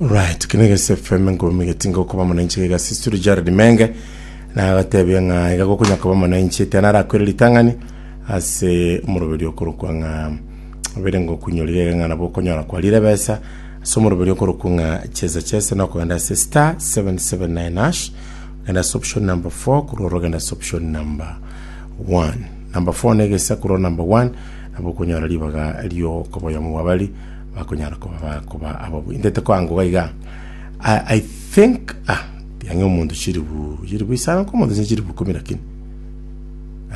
Right, kino gese FM ngomi getinga okuba mwananchi gega sisturi Jared Menge na agatebia ng'a iga gokonya kuba mwananchi etena arakwere ritang'ani ase omoroberi okorokwa ng'a obere ngo kunyori gega ng'a nabo okonyora kwa rire besa ase omoroberi okorokwa ng'a chesa chesa na okogenda ase star 779 hash ogenda ase option number 4 korwa oro ogenda ase option number 1 number 4 na egesa korwa number 1 nabo okonyora ribaga riokoboyamo bwabari bakonyara koba bakoba abo intete kwangu gaiga I, I think ah tiang'e omonto chiribu chiribu isano nkomonto se chiribu kumi lakini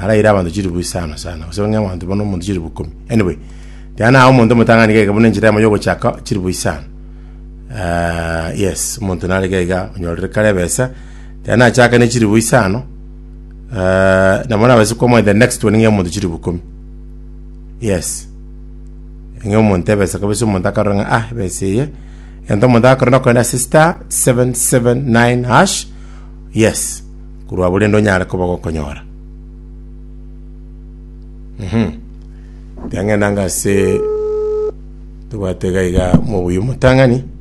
araire abanto chiribu isano sana gose bang'e abanto bono omonto chiribu kumi anyway tiana ao omonto omotang'ani gaiga buna enchera yamo yogochaka chiribu isano Ah, yes omonto nare gaiga onyorire kare ebesa tiana achaka ne chiribu isano Ah, nabo nabase kwamwa the next one ng'e omonto chiribu kumi yes Ng'a omonto ebesa kabisa, omonto akarora ng'a ah, ebesa eye. Egento omonto agakora nokogenda ase star 779 hash. Yes. Korwa abwo rende onyare koba gokonyora. Mhm. Yang'enda anga ase tobwate iga iga mobuya omotang'ani.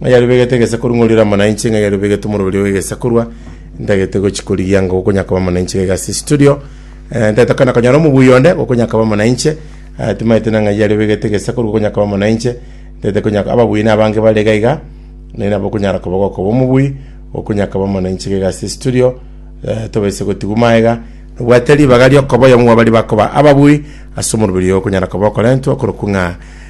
Oyarubegete egesaku ng'orire amo nainche, ng'a yarubegete omorweri ogegesakurwa ntagete gochi korigia ng'a gokonya koba amo nainche iga igase studio. Eh, ntagete kona konyora omobui onde gokonya koba amo nainche, eh, timaete na ng'a yarubegete egesaku gokonya koba amo nainche, ntagete konya ababui na abange bare iga iga, naye nabo okonyara koba gokoba omobui, gokonya koba amo nainche iga igase studio, eh, tobaise gotigwa maega, nobwate ribaga riokoba oyomo bwa baria bakoba ababui ase omorweri oyo okonyara koba okorentwa okorokwa ng'a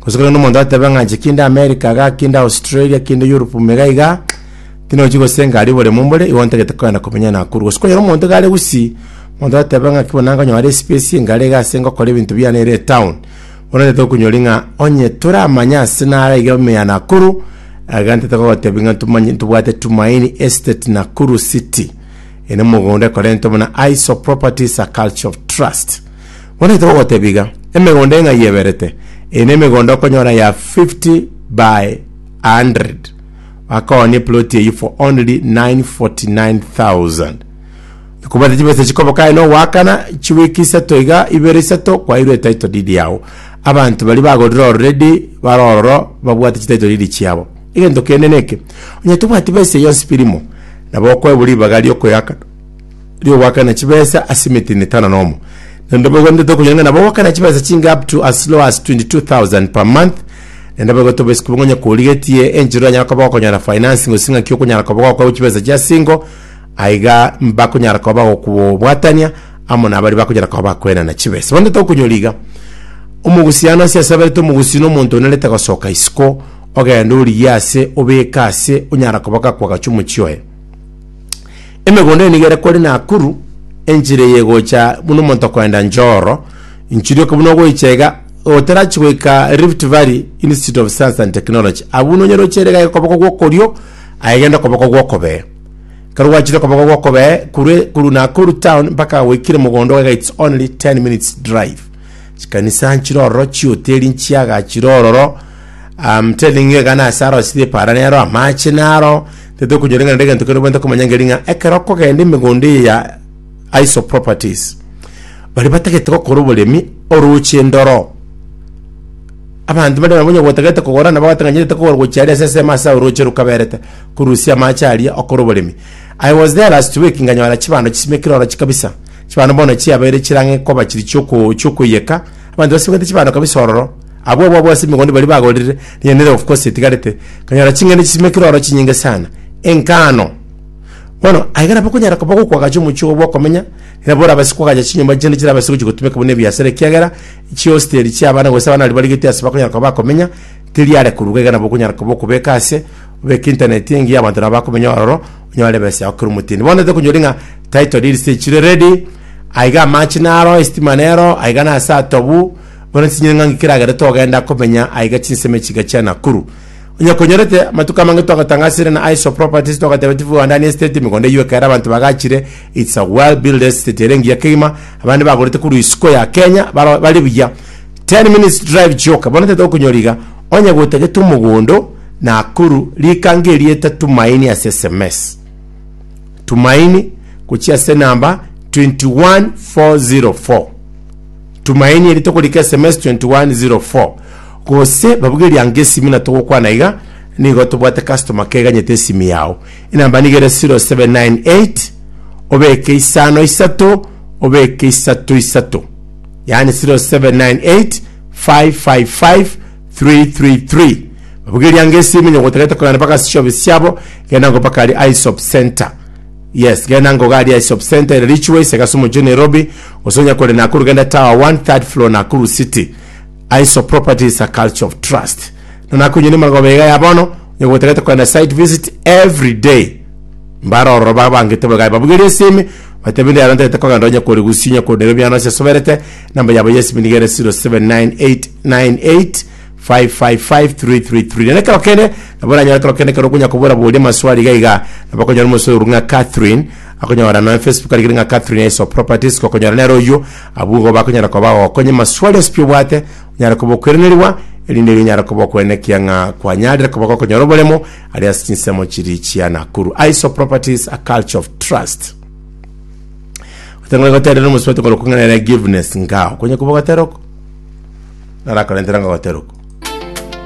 Gose kore nomonto atebe ng'a inche kinde America iga, kinde Australia, kinde Europe ime iga iga, tinochi gosenka aria oboremu mbore, igo ntagete kogenda komenya Nakuru. Gose kwanyora omonto iga are Gusii, omonto atebe ng'a ki bono nagonyora espace engare iga ase ngokora ebinto biane ere etown, bono ntagete gokonyori ng'a onye toramanye ase nare iga ime ya Nakuru, iga ntagete gogotebi ng'a ntomanye ntobwate Tumaini Estate Nakuru City, ere mogondo ekorentwe buna Aiso Properties a Culture of Trust. Bono togotebia iga, emegondo eng'ai yeberete, eye nemegondo okonyora ya 50 by 100, bakoonia eploti eyio for only 949,000. Okobwate chibesa chikoboka aye nogoakana, chiweek isato iga, ibere isato, kwairwe etitle deed yao. Abanto baria bagorire already bare ororo babwate chititle deed chiabo. Egento kende neke, onye tobwati besa eyio yonsi birimo, nabo okoebwa ribaga riokoeakana. ri'ogoakana chibesa ase emetini etano na omo. Naende boigo ninde tokonyora ng'a nabo ogoakana chibesa chinge up to as low as 22,000 per month. Naende boigo toboisiki bobe ng'onye korigetie enchera oranyare koba gokonyora finance gose ng'aki okonyara koba gokoegwa chibesa chia single, aiga mbakonyara koba bagokobwatania amo na baria bakonyara koba bakoenana chibesa. Bono tokonyora iga, omogusiano ase asaberete omogusi na omonto onerete gosoka isiko, ogende origie ase, obeke ase, onyara koba gakwa agacha omochie oye. Emegondo eye nigo ere kore Nakuru, enchera eye egocha buna omonto okoenda Njoro, nchirioka buna ogoicha iga, otarachi goika Rift Valley Institute of Science and Technology, abwo buna onyare ochere iga okoboko gwa okorio, aye genda okoboko gwa okobee. Ekero gwachire okoboko gwa okobee, korwa korwa Nakuru town mpaka goikire mogondo iga it's only 10 minutes drive. Chikanisa nchire ororo, chihoteri nchiaga chire ororo, I'm telling you iga nase aroo chire eparane aroo, amache naro, Tari tokonyoreng'ana na egento keria obwenerete komanya nkeri ng'a ekero okogenda emegondo eye ya ISO Properties, baria batagete gokora oboremi oroche ndoro. Abanto bare nabo onye gotagete kogora nabo batang'anyerete kogora gochia aria ase esemo ase oroche rokaberete korusia amache aria okore oboremi. I was there last week nkanyora chibando chisimekire oroche kabisa, chibando bono chiabeire chirang'e koba chiri chioko chiokoiyeka, abanto basimegete chibando kabisa ororo. Abwo ababwasi b'emegwando baria bagorire, rinya nere of course etigarete, kanyora ching'ende chisime kiro oro chinyinge sana. Enkano. Bono, aiga nabo okonyara koba gokwagacha omochie obo bw'okomenya, nabo orabase kwagacha chinyomba chinde chirabase gochia gotumeka buna ebiasara ekiagera chihosteri chia abana gose abana baria barigetie ase bakonyara koba bakomenya, teri are koruga iga nabo okonyara koba okobeka ase, obeke internet engiya abanto nabo bakomenya ororo, onyore ebesa yao kera omotindi. Bono ntete konyori ng'a title deeds tichire ready, aiga amache naro, estima nero, aiga nase atobu, Bono ntichinyire ng'a nkikeragere togenda komenya aiga chinsemo echiga chia Nakuru. Onye konyorete, amatuko amange twagatanga asere na ISO Properties twagateba tifu goandania estate, emegondo eyio ekaera abanto bagachire, it's a well built estate ere engiya kegima, abande bagorete korwa isiko ya Kenya baro bari buya. 10 minutes drive chioka, bono tete okonyora iga, onye gotagete omogondo Nakuru, rika ngerieta Tumaini ase sms. Tumaini, gochia ase enamba 21404. Tumaini eri tokorika sms 2104 gose babuge eriango esimi na togokwana iga nigo tobwate customer care eganyete esimi yao enamba nigo ere 0798 obeke isano isato obeke isato isato yaani 0798 555 333 babuge eriango esimi nyogotagete kogenda mpaka ase shop siabo genda nko mpaka ari isop center Yes genda ngoga aria e shop center ere richuo ase Kasumu Juu Nairobi gose onya kore Nakuru genda tower 1 third floor Nakuru city Aiso properties a culture of trust na nakonyonia magoba iga ya bono onya gotagete kogenda site visit every day mbare ororo ba bangete boiga babugerie esimi batebe ndi aro ntagete kogenda onya kore Gusii onya kore Nairobi ano ase soberete number yabo ya esimi niga ere 079898 555333 nere ekero kende nabo oranyore ekero kende ekero okonya kobora bori amaswali iga iga nabo okonyora omosoe oru ng'a Catherine akonyora noe Facebook arigire ng'a Catherine Aiso Properties gokonyora nere oyio abwo igo bakonyara koba bagokonya amaswali ase pi obwate onyare koba okwerenerigwa erinde iga onyare koba okwena ekiya ng'a kwanyarire koba gokonyora oboremo aria ase chinsemo chiri chia Nakuru Aiso Properties a culture of trust Otang'ane goteera na omosubati okore okong'aina giveness ngao. Konya koba ogoteera oko, narakorentera ng'a ogoteera oko.